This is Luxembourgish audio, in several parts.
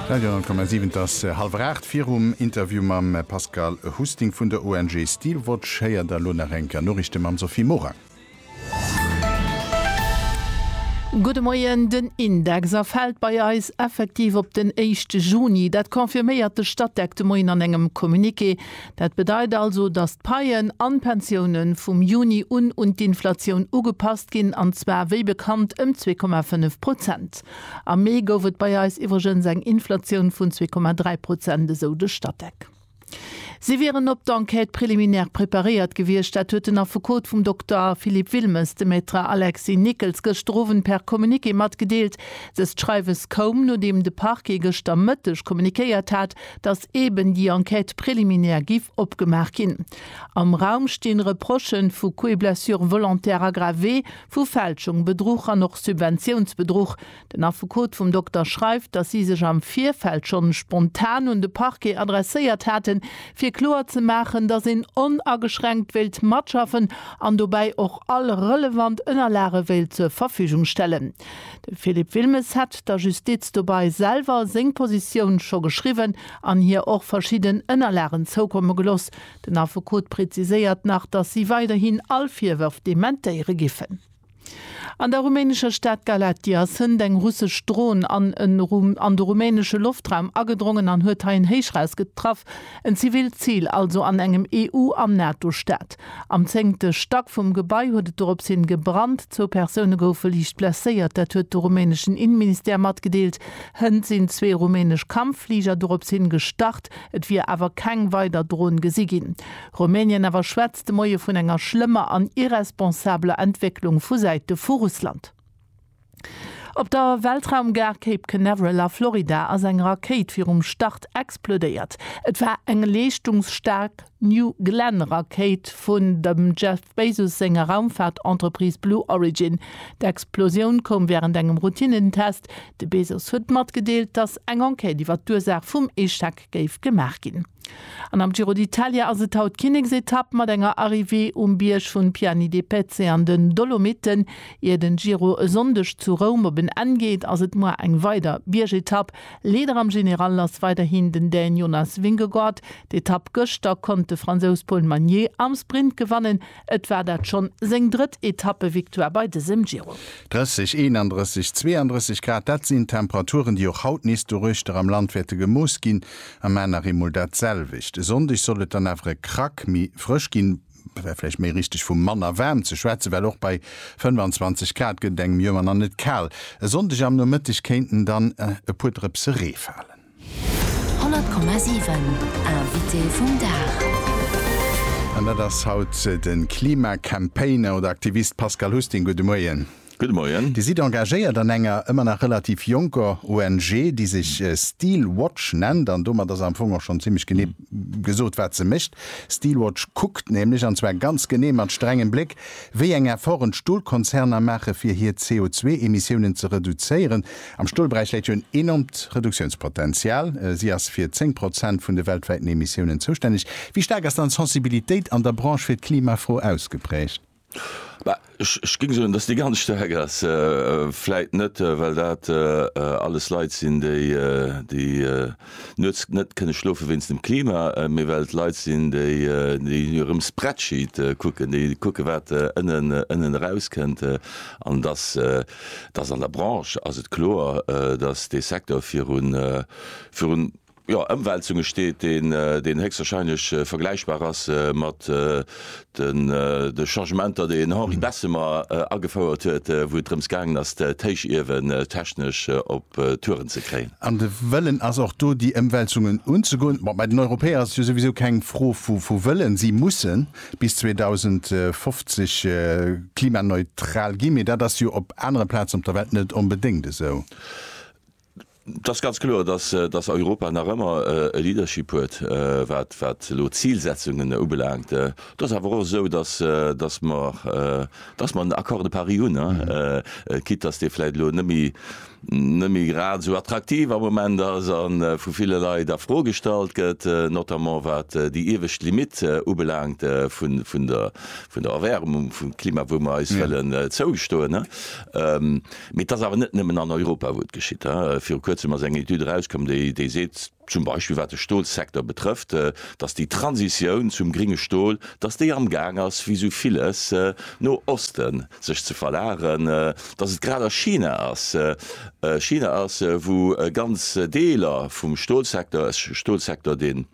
Radio,7 Et ass hallwer 8. Virum Interview mam Pascal Husting vun der ONG Steelwatch héiert der elo nach eng Kéier Noriichte mam Sophie Morang. Gudde Moien, Den Index erfält bei eis effektiv op den éischte Juni. Dat confirméiert de Statec de Moien an engem Communiqué. Dat bedeit also, datt d'Paien an d'Pensioune vum Juni un un d'Inflatioun ugepasst ginn, an zwar wéi bekannt ëm zwee Komma fënnef Prozent. Am Mee gouf et bei eis iwwregens eng Inflatioun vun 2,3 Prozent, esou de Statec. Si wieren op d'Enquête préliminaire preparéiert gewiescht. Dat huet den Affekot vum Dokter Philippe Wilmes, de Maître Alexis Nickels, gëschter Owend per Communiqué matgedeelt. Dëst Schreiwes koum, nodeem de Parquet gëschter Mëtteg kommuniquéiert hat, datt eeben déi Enquête préliminaire géif opgemaach ginn. Am Raum stinn Reprochen vu Coups et blessures volontaires aggravés, Vu Fälschung, Bedruch an och Subventiounsbedruch. Den Affekot vum Dokter schreift, datt si sech am Virfeld schonn spontan un de Parquet adresséiert haten, fir kloer ze maachen, datt een onageschränkt wéilt matschaffen an dobäi och all relevant Ënnerlage wéilt zur Verfügung stellen. De Philippe Wilmes hätt der Justiz dobei selwer seng Positioun scho geschriwwen an hir och verschidden Ënnerlagen zoukomme geloss, Den Affekot präziséiert nach, datt si weiderhin all Virwërf dementéiere giffen. An der rumänescher Stad Galatia sënnt eng russesch Dron an en an de rumänesche Loftraum agedrongen an huet hei en Héichrausget traff, en zivilt Zil also an engem EU an NATO-Staat. Am zéngte Stack vum Gebai huet et dorops hin gebrannt. Zwou Persoune goufe liicht blesséiert, dat huet de rumäneschen Inneministère matgedeelt. Hënt sinn zwee rumänesch Kampffliger dorops hin gestart. Et wier awer keng weider Dron gesi ginn. Rumänien awer schwätzt de Moie vun enger schlëmmer an irresponsabeler Entwécklung vu Säite vu Russland. Op der Weltraumgare Cape Canaveral a Florida ass eng Rakéit virum Start explodéiert. Et war eng leeschtungsstaark New Glenn Rakéit vun dem Jeff Bezos senger Raumfaart-Entreprise Blue Origin. D'Explosioun koum wärend engem Routinnentest. De Bezos huet matgedeelt, datt eng Enquête iwwer d'Ursaach vum Echec géif gemaach ginn. An am Giro d'Italia ass et haut d'Kinneksetapp mat enger Arrivée um Bierg vun Piani de Pezze an den Dolomiten. Ier den Giro e Sonndeg zu Roum op en Enn geet, ass et muer eng weider Biergetapp. Leader am General ass weiderhin den Dän Jonas Vingegaard. D'Etapp gëschter konnt de Fransous Paul Magnier am Sprint gewannen. Et war dat schonn seng drëtt Etappevictoire bei dësem Giro. 30, 31, 32 Grad, dat sinn Temperaturen, déi och haut nees doruechter am Land wäerte gemooss ginn, a mar nach eemol dat selwecht. E Sonndeg soll et dann awer e Krack méi frësch ginn. wär vläicht méi richteg vu manner waarm ze schwätzen, well och bei 25 Grad gëtt et engem Joer nach net kal. E Sonndeg am Nomëtteg kéinten dann e puer Drëpse Ree falen. 100,7 Invité vum Dag. An dat ass haut de Klima-Campaigner oder aktivist Pascal Husting. Gudde Moien. Gudde Moien. Dir sidd engagéiert an enger ëmmer nach relativ jonker ONG, déi sech Steel Watch nennt. An domat ass am Fong och schonn zimmlech genee gesot, wat se mécht. Steel Watch kuckt nämlech, an zwar ganz genee mat strengem Bléck, wéi eng Efforten d'Stolkonzerner maachen, fir hir CO2-Emissiounen ze reduzéieren. Am Stolberäich läit jo en enormt Reduktiounspotenzial. Si ass fir 10 Prozent vun de weltwäiten Emissiounen zoustänneg. Wéi staark ass dann d'Sensibilitéit an der Branche fir d'Klimafro ausgeprägt? Bah, ech, ech géing soen, dass déi ganz staark ass. Vläit net, well dat alles Leit sinn, déi, déi nuets net kënne schlofen wéinst dem Klima, mee well et Leit sinn, déi, déi hirem Spreadsheet kucken, déi kucken, wat ënnen, ënnen erauskënnt. An dass, dass an der Branche ass et kloer, dass dee Secteur virun, virun, jo, Ëmwälzunge steet, deen, deen héchstwahrscheinlech vergläichbar ass mat den, de Changementer, déi en Henri Bessemer agefouert huet, wou et drëms gaangen ass, d'Héichiewen technesch op Touren ze kréien. An de Wëllen ass och do, déi Ëmwälzungen unzegoen. Bon, bei den Europäer ass et jo souwisou keng Fro vu, vu Wëllen, si musse bis 2050 klimaneutral ginn, mee dat ass jo op anere Plazen op der Welt net onbedéngt esou. Et ass ganz kloer, dass Europa nach ëmmer e Leadership huet, wat elo d'Zilsetzungen ubelaangt. Et ass awer och esou, dass mer den Accord de Paris hunn, quitte dass dee vläicht elo net méi grad esou attraktiv am Moment ass a vu ville Leit a Fro gestallt gëtt, notamment wat déi iewescht Limitt ubelaangt vun der Erwäermung, vum Klima, wou mer eis wëllen zougestoen. Mee et ass awer net nëmmen an Europa, wou et geschitt. Viru Kuerzem ass eng Etüd erauskomm, déi seet, zum Beispill wat de Stolsecteur betrëfft, datt déi Transitioun zum gringe Stol, datt déi amgaang ass, wéi esou villes no Oste sech ze verlageren, datt et grad a China ass. China ass, wou ganz Deeler vum Stolsecteur, e Stolsecteur, deen,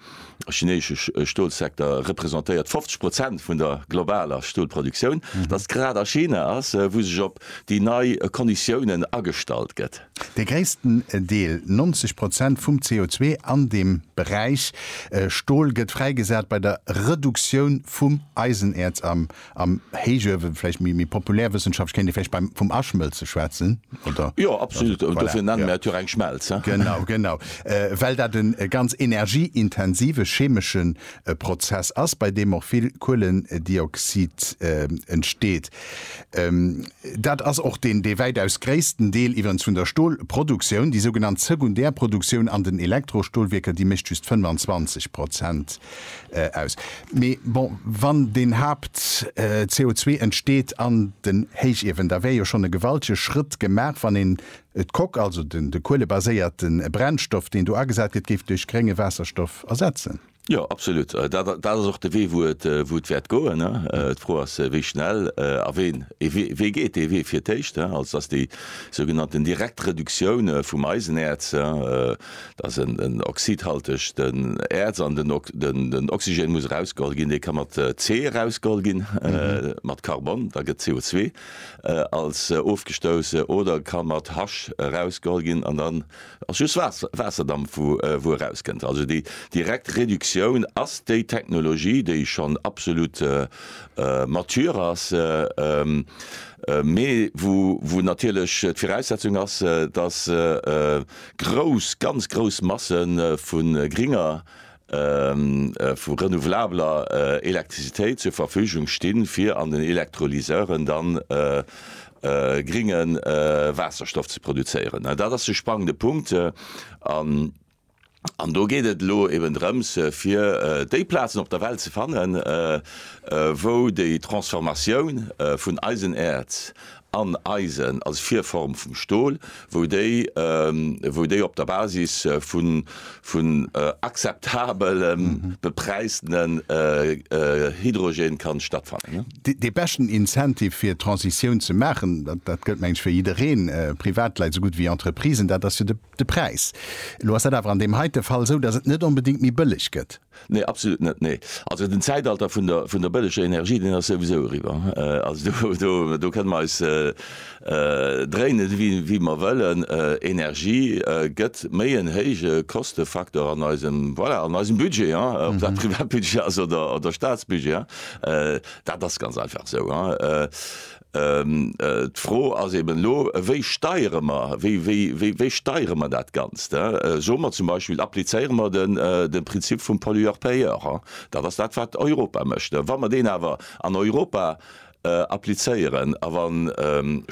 De chineesche Stolsekter representéiert 50 Prozent vun der globaler Stolproduktioun. Datt grad a China ass, wou sech op déi nei Konditiounen agestallt gëtt. Dee gréissten Deel, 90 Prozent vum CO2 an dem Beräich Stol gëtt fräigesat bei der Reduktioun vum Eisenäerz am Am Héichuewe vläicht méi méi populär wëssenschaftlech, kéint ee vläicht beim vum Aschmëlze schwätzen, oder? Jo, absolut, an dofir nenne mer et jo och eng Schmelz, he? Genau, genau. Well dat e ganz energieintensive chemesche Prozess ass, bei deem och vill Kuelendioxid entsteet. Dat ass och deen dee wäitaus gréissten Deel iwwerens vun der Stolproduktioun. Déi sougenannt Sekundärproduktioun an den Elektrostolwierker, déi mécht just 25 Prozent aus. Mee bon, wann deen Haapt CO2 entsteet an den Héichiewen, da wär jo schonn e gewaltege Schrëtt gemaach, wann een d'Coque, also de kuelebaséierte Brennstoff, deen do agesat gëtt, géif duerch grénge Waasserstoff ersetzen. Jo, absolut. Dat ass och de Wee, wou et wäert goen. D'Fro ass, wéi schnell a wien. Wee geet dee Wee fir d'éischt? Also, dass déi sougenannten direkt Reduktioun vum Eisenäerz, Et ass en oxidhaltegt Äerz an den Oxygen muss erausgeholl ginn. Dee ka mat C erausgeholl ginn, mat Carbon, da gëtt CO2 als ofgestouss, oder ka mat H erausgeholl ginn an dann ass just Waasserdampf wou erauskënnt. Also déi direkt Reduktioun ass déi Technologie déi schonn absolut mature ass, mee wou natierlech d'Viraussetzung ass, datt Grouss, ganz grouss Masse vu gringer, vu renouvelabler Elektrizitéit zur Verfügung sti fir an den Elektrolyseuren da gringe Waasserstoff ze produzéieren. Dat ass de spannende Punkt an do geet et elo eben drëms, fir déi Plazen op der Welt ze fannen, wou déi Transformatioun vun Eisenäerz an Eisen als Virform vum Stol, wou déi wou déi op der Basis vun vun akzeptabele bepräisene Hydrogène kann stattfannen. Dee beschten Incentive fir d'Transitioun ze maachen, dat gëllt mengen ech fir jiddereen, Privatleit esou gutt wéi Entreprisen, dat ass jo de Präis. Elo ass dat awer an deem heite Fall esou, datt et net onbedéngt méi bëlleg gëtt. Nee, absolut net, nee. Also den Zäitalter vun der, vun der bëlleger Energie, deen ass souwisou eriwwer. Also do, do, do kënne mer eis dréinen, wéi, wéi mer wëllen. Energie gëtt méi en héije Kostefaktor an eisem, voilà, an eisem Budget, hein, ob dat Privatbudget ass oder, oder Statsbudget, hein. Dat ass ganz einfach esou, hein. D'Fro ass eben elo, wéi steiere mer, wéi steiere mer dat Ganzt? Soe mer zum Beispill, applizéiere mer de Prinzip vum Pollueur-payeur. Dat ass dat, wat Europa mécht. Wa mer deen awer an Europa applizéieren a wa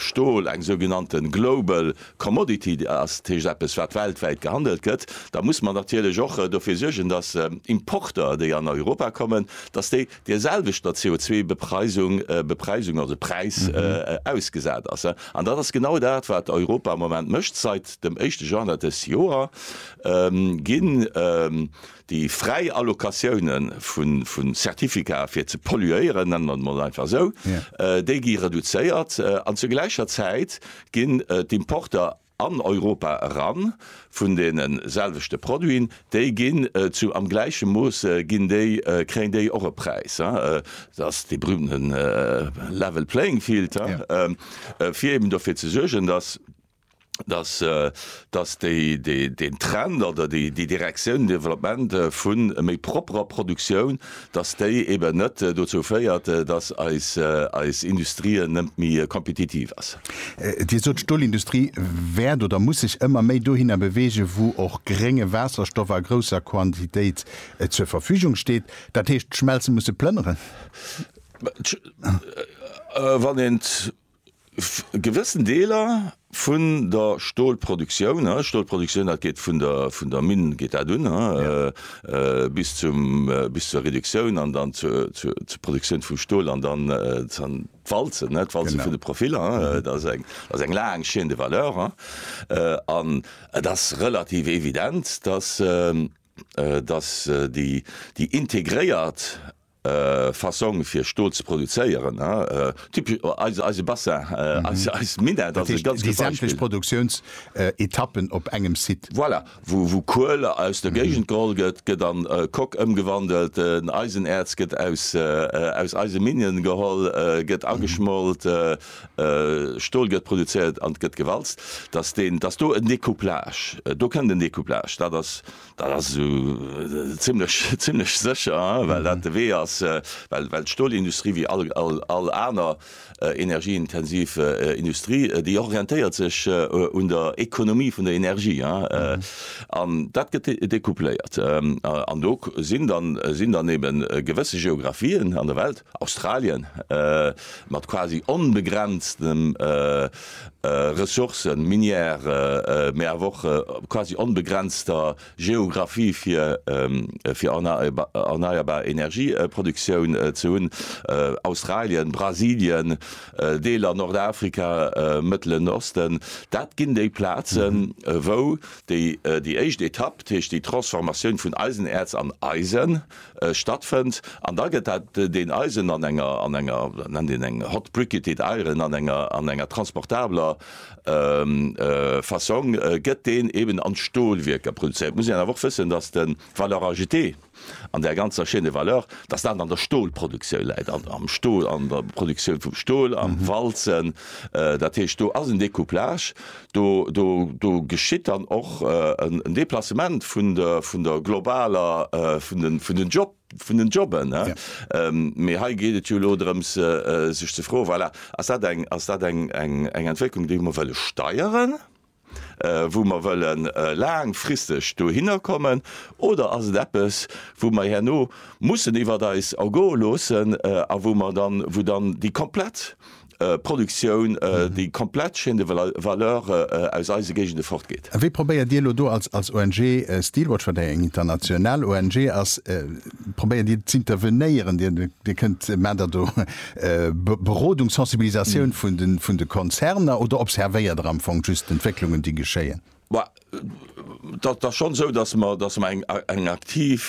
Stol eng sougenannte global commodity ass, dat heescht eppes, wat weltwäit gehandelt gëtt, da muss mer natierlech och dofir suergen, dass Importer, déi an Europa kommen, dass déi der selwechter CO2-Bepreisung, Bepreisung, also Präis, ausgesat ass. An dat ass genau dat, wat Europa am Moment mécht. Seit dem éischte Januar dëst Joer ginn déi fräi Allocatioune vu Certificaten, fir ze polluéieren, nenne mer et emol einfach esou, déi gi reduzéiert an zur gläicher Zäit ginn d'Importer, an Europa eran vun deene selwechte Produiten, déi ginn zu, am gläiche Mooss ginn déi, kréien déi och e Präis, et ass dee berühmte level playing field, fir eben dofir ze suergen, dass, dass, dass déi, deen Trend oder déi, déi Direktioun, den Développement vu méi propperer Produktioun, dass déi eben net dozou féiert, dass eis Industrie net méi kompetitiv ass. Dir sot, d'Stolindustrie wäert oder muss sech ëmmer méi dohinner beweegen, wou och grénge Waasserstoff a grousser Quantitéit zur Verfügung steet. Dat heescht, d'Schmelze musse plënneren? Gewëssen Deeler vun der Stolproduktioun, ne, Stolproduktioun, dat geet vun der, vun der Minn geet dat un, ne, bis zum, bis zur Reduktioun an dann zur, zur, zur Produktioun vum Stol an dann dann d'Walzen, ne, d'Walzen vun de Profiller. Dat ass eng, dat ass eng laang Chaîne de valeur. An et ass relativ evident, dass, dass déi, déi integréiert. Fassong fir Stol ze produzéieren, typesch eise Bassin, eis Minett ass e ganz gutt Beispill. Dat heescht, déi sämtlech Produktiounsetappen op engem Site? Voilà, wou Kuel aus der Géigend geholl gëtt, gëtt an Coque ëmgewandelt, den Eisenäerz gëtt aus eise Minen geholl, gëtt ageschmolt, Stol gëtt produzéiert an gëtt gewalzt, dass do en Découplage, do kënnt en Découplage, dat ass Dat ass zimlech sécher, well dat de Wee ass, well d'Stolindustrie, wéi all aner energieintensiv Industrie, déi orientéiert sech un der Ekonomie vun der Energie an dat gëtt decoupléiert. An do sinn dann eben gewësse Geographien an der Welt, Australien, mat quasi onbegrenztem Ressourcen, Minière, mä awer och quasi onbegrenzter Geographie fir erneierbar Energieproduktioun ze hunn, Australien, Brasilien, Deeler Nordafrika, Mëttelen Osten, dat ginn déi Plazen, wou déi éischt Etapp, dat heescht déi Transformatioun vun Eisenäerz an Eisen, stattfënnt an da gëtt dat deen Eisen an enger, an enger, dat nennt een eng hot briquetted iron, an enger, an enger transportabler Fassong gëtt deen eben an d'Stolwierker produzéiert. Et muss een awer och wëssen, datt de valeur ajoutée an där ganzer Chaîne de valeur, datt dat an der Stolproduktioun läit, am Stol, an der Produktioun vum Stol, am Walzen, dat heescht do ass en Découplage, Do geschitt dann och en Deplacement vun der globaler, vun den Job, vun den Jobben. Mee hei geet et jo elo drëms sech ze froen, voilà, ass dat eng, ass dat eng Entwécklung déi mer wëlle steieren, wou mer wëlle laangfristeg dohinner kommen, oder ass et eppes wou mer herno mussen iwwert eis ergoe loossen a wou mer dann, wou dann déi komplett Produktioun, déi komplett Chaîne de valeur aus eise Géigende fortgeet. A wéi probéiert Dir elo do als ONG Steelwatch, wat eng international ONG ass, probéiert Dir z'intervenéieren? Dir kënnt, maacht Der do Berodung, Sensibilisatioun vun de Konzerner oder observéiert Der am Fong just d'Entwécklungen, déi geschéien? Et ass schonn esou, datt mer eng aktiv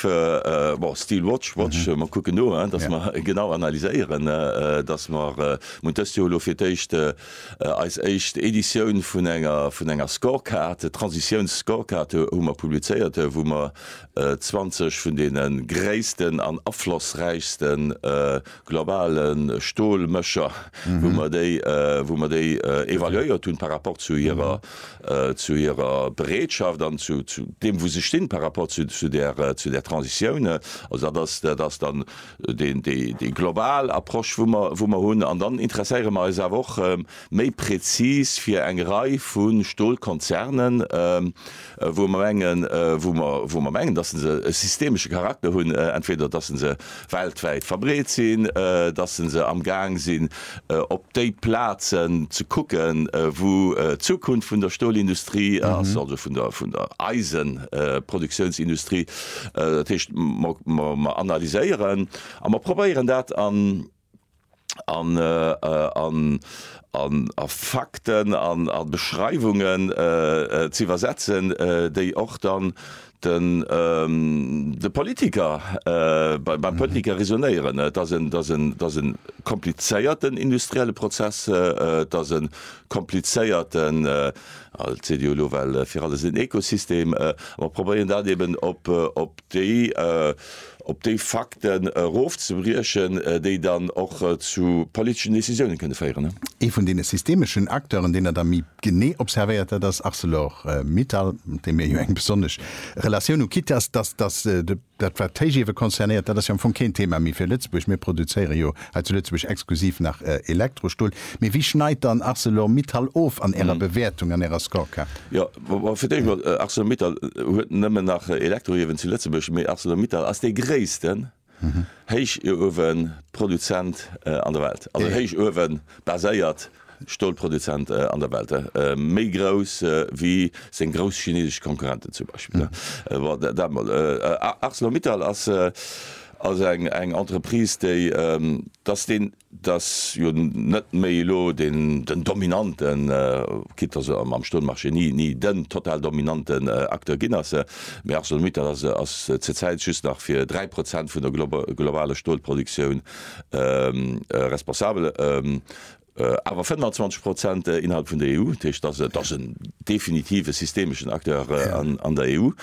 Still Watch, Watch, mer kucken no, datt mer genau analyséieren, datt mer dëst Joer elo fir d'éischt eis éischt Editioun vun enger Scorecard, Transitiouns-Scorecard, hu mer publizéiert, wou mer 20 vun deene gréissten an aflossräichste globale Stolmécher, wou mer déi, wou mer déi evaluéiert hunn par rapport zu hirer, zu hirer Bereetschaft an zu deem, wou se stinn par rapport zu, zu där, zu där Transitioun. Also dat ass, dat ass dann deen, déi, déi global Approche, wou mer, wou mer hunn. An dann interesséiere mer eis awer och méi präzis fir eng Rei vu Stolkonzernen, wou mer mengen, wou mer, wou mer mengen, dass se e systemesche Charakter hunn, entweder dass se weltwäit verbreet sinn, dass se amgaang sinn, op déi Plazen ze kucken, wou d'Zukunft vun der Stolindustrie ass, also vun der, vun der Eisenproduktionsindustrie. Dat heescht, mer, mer analyséieren a mer probéieren dat an. a Fakten a Beschreiwungen z'iwwersetzen, déi och dann de Politiker, beim Politiker resonéieren. Et ass e komplizéierten industrielle Prozess, et ass e komplizéierten, als CDU elo, well fir alles en Ekosystem, ma probéieren dat eeben op déi. op déi Fakten erofzebriechen, déi dann och zu politeschen Décisiounen kënne féieren. Ee vun deene systemeschen Acteuren, deen Der da méi genee observéiert, dat ass Arcelor-Mittal, mat deem Dir jo eng besonnesch Relatioun hutt. Quitte à ce, dass dat, wat d'Héichiewe concernéiert, dat ass jo am Fong keen Thema méi fir Lëtzebuerg, mir produzéieren jo hei zu Lëtzebuerg exklusiv nach Elektrostuel. Mee wéi schneit dann Arcelor-Mittal of an Ärer Bewäertung, an Ärer Scorecard? Fir d'éischt emol, Arcelor-Mittal huet nëmmen nach Elektroiewen zu Lëtzebuerg, mee Arcelor-Mittal ass dee gréissten Héichueweproduzent an der Welt, also héichuewebaséiert Stolproduzent an der Welt, méi grouss wéi seng grouss chinesesch Konkurrenten zum Beispill. Bon, dat emol. Arcelor-Mittal ass also eng Entreprise, déi, dass deen dass jo net méi elo den dominanten, quitte dass e mam Stroummarché ni den total dominanten Acteur ginn ass, mee ArcelorMittal ass zur Zäit just nach fir dräi Prozent vun der globaler Stolproduktioun responsabel, awer 25 Prozent innerhalb vun der EU. Dat heescht, dat ass en definitive systemeschen Acteur an der EU.